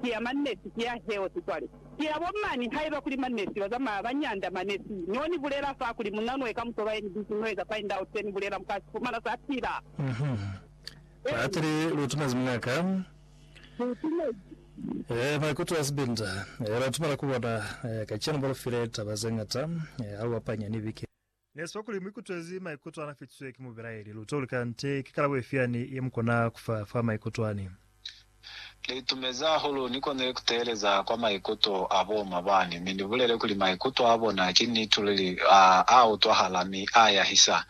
ki ya mannesi, ki ya health cwale ki ya bo mani. Haiba kuli mannesi ba zamaya ba nyanda mane, si no ni bulela fa kuli mu nanwe ka muto ba ye ni busy no eza find out se ni bulela mu ka si fumana sa pila. Uhmm Paatile lu tumezi mungaka? Lu tumezi. Eeh maikuto a sibinda. Eeh ba tumela ku bona. Eeh kacenu ba lu file taba ze ngata. Eeh ha lu apanya ni bike. Ne swa kuli mu ikutwezi maikuto ana fitiswe ki mubelaeli. Lu toli kante ki kalabo ifi yani ye mu kona ku fa fa maikuto ani. Li itumezi hahulu ni konile ku teeleza kwa maikuto a bo ma bani, mi ni bulele kuli maikuto a bona ki nitululi, a utwahala mi a yahisa.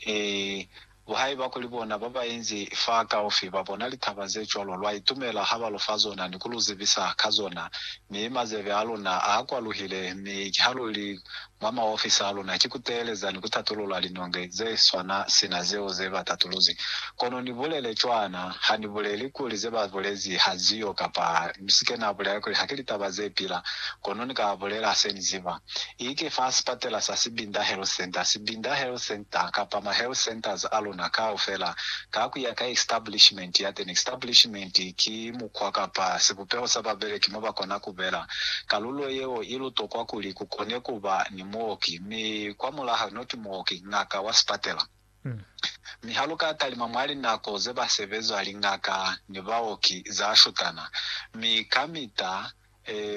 Ee, Lu haiba kuli bona ba ba inzi fa kaufi ba bona litaba ze cwalo, lwa itumela ha ba lu fa zona ni ku lu zibisa ka zona. Mi mazebe a luna a kwaluhile, mi ha lu li mwa maofisi a luna ki ku teeleza ni ku tatulula linonge ze swana sina zeo ze ba tatuluzi. Kono ni bulele cwana, Ha ni buleli kuli ze ba bulezi ha ziyo, kapa ni si ke na bulela kuli ha ki litaba ze pila, kono ni ka bulela se ni ziba. Ike fa sipatela sa Sibinda Health Centre, Sibinda Health Centre, kapa ma health centers a luna kaufela, ka ku ya ka establishment yateni. Establishment ki mukwa kapa sibupeho sa babeleki mo ba kona ku bela. Kalulo yeo i lu tokwa kuli ku kone ku ba ni muoki, mi kwa mulaho not muoki, ngaka wa sipatela. Mi haluka talima mwa linako ze ba sebeza lingaka ni baoki za shutana, mi kamita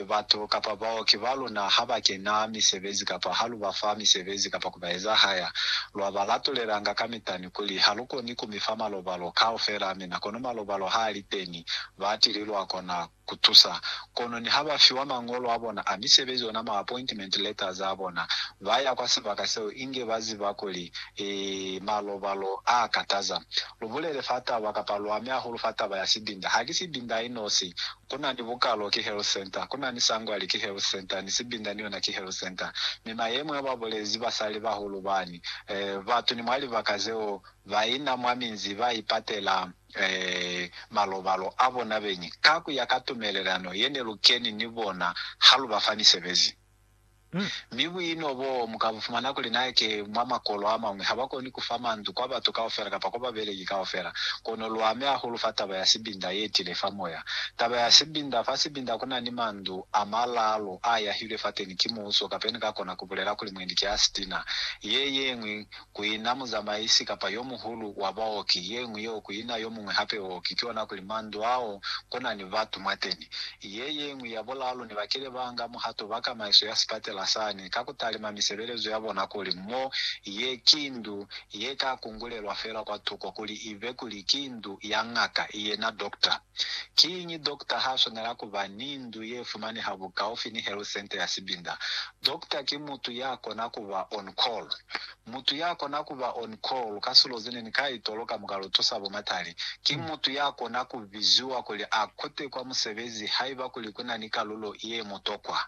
batu kapa baoki ba luna ha ba kena misebezi kapa ha lu ba fa misebezi kapa ku ba ezahaya, lwa ba latulelanga kamita ni kuli, Ha lu koni ku mi fa malobalo kaufela, mina kono malobalo ha a li teni, ba tili lwa kona ku. ku tusa. Kono niha ba fiwa mañolo a bona a misebezi ona ma appointment letters a bona, ba ya kwa sibaka seo inge ba ziba kuli, Ee, malobalo a kataza. Lu bulele fa taba kapa lu ame hahulu fa taba ya sibinda. Ha ki sibinda i nosi. Ku na ni bukalo, ki health center. Ku na ni sangwali, ki health center. Ni sibinda ni yona ki health center. Mi mayemo ya ba bulezi basali bahulu bani, eh, batu ni mwa libaka zeo ba ina mwa minzi ba ipatela. malobalo a bona beñi ka ku ya ka tumelelano ye ne lu keni ni bona ha lu ba fa misebezi. Mi buino boo mu ka bu fumana kuli na ki mwa makolo a mañwi ha ba koni ku fa mandu kwa batu kaufela kapa kwa babeleki kaufela. Kono lu ame hahulu fa taba ya sibinda ye tile fa moya. Taba ya sibinda, Fa sibinda ku na ni mandu a malaalu a yahilwe fateni ki muuso, kapeni ka kona ku bulela kuli mwendi ki a sitina. Ye yeñwi kuina muzamaisi kapa yomuhulu wa baoki, yeñwi yeo kuina yomuñwi hape ooki, kikona kuli mandu ao kunani batu mwateni. Yeyeñwi ya bulalu ne bakile baanga muhato ba kamaiso ya sipatela sani ka kutalima misebelezo yabona kuli mo ye ki ndu ye ka kungulelwa feela kwatuko kuli ibe kuli ki ndu ya ngaka, yena Doctor. Kiñi dokta ha swanela ku ba ni ndu ye fumaneha bukaufi ni health centre ya sibinda? Dokta ki mutu ya kona ku ba on call. Mutu ya kona ku ba on call ka silo ze ne ni ka itolo ka mukalo tusa bo matali, ki mutu ya kona ku biziwa kuli a kute kwa musebezi haiba kuli ku na ni kalulo ye mutokwa.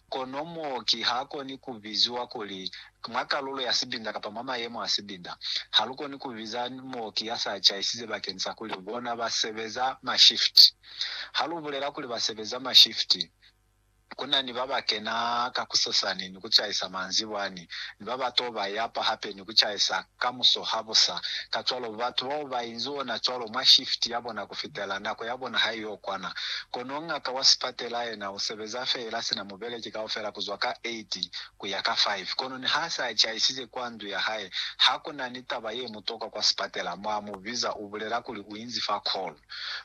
Kono mooki ha koni ku biziwa kuli Mwa kalulo ya sibinda kapa mwa mayemo a sibinda, ha lu koni ku biza muoki ya sa caisize bakeni sa kuli bona ba sebeza mashifti. Ha lu bulela kuli ba sebeza mashifti, ku na ni ba ba kena ka kusasani ni ku caisa manzibwani, ni ba ba t'o ba yapa hape ni ku caisa ka musohabusa. Kacwalo, batu bao ba inzi ona cwalo mwa shifti ya bona ku fitela nako ya bona ha i y'o kwana. Kono ngaka wa sipatela yena u sebeza feela sina mubeleki kaufela ku zwa ka 8 ku ya ka 5, kono niha se a caisize kwa ndu ya hae, ha ku na ni taba ye mutokwa kwa sipatela mwa mu biza, u bulela kuli u inzi fa kholu.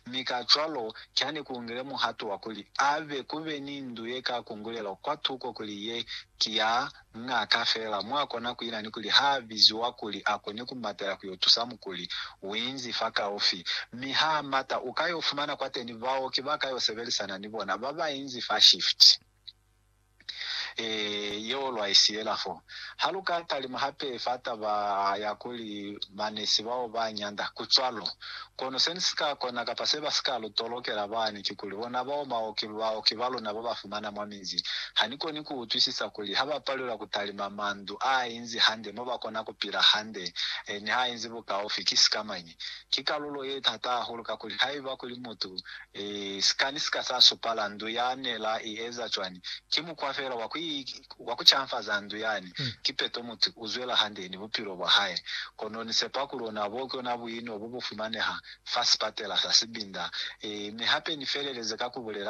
Mi kacwalo, kya ni ku ngile muhato wa kuli a be ku be ni ndu ye ka kungulelo kwa tuko kuli ye ki ya ng'aka feela mwa kona ku ina ni kuli ha a biziwa kuli a kone ku matela ku yo tusa mukuli, u inzi fakaufi. Mi ha a mata, u ka yo fumana kwateni baoki ba ka yo sebelisana ni bona ba ba inzi fa shift. Ee, yeo lwa i siyela fo. Ha lu ka talima hape fa taba ya kuli banesi bao ba nyanda, ku cwalo. Kono se ni si ka kona kapa se ba si ka lu tolokela bani kikuli, bona bao baoki, baoki ba luna ba ba fumana mwa minzi, ha ni koni ku utwisisa kuli ha ba palelwa ku talima mandu a inzi hande mo ba kona ku pila hande, e, ni ha inzi bukaufi. Ki sikamañi? Ki kalulo ye tata hahulu, kakuli haiba kuli mutu E, sikani sika sa supala ndu ya ne la i eza cwani. Ki mukwa fela wa ku, wa ku canfaza ndu yani. Kipeto mutu u zwela hande ni bupilo bwa hae. Kono ni sepa kuli ona bo ki ona buino bo bu fumaneha fa sipatela sa sibinda. E, mi hape ni feleleze ka ku bulela kuli.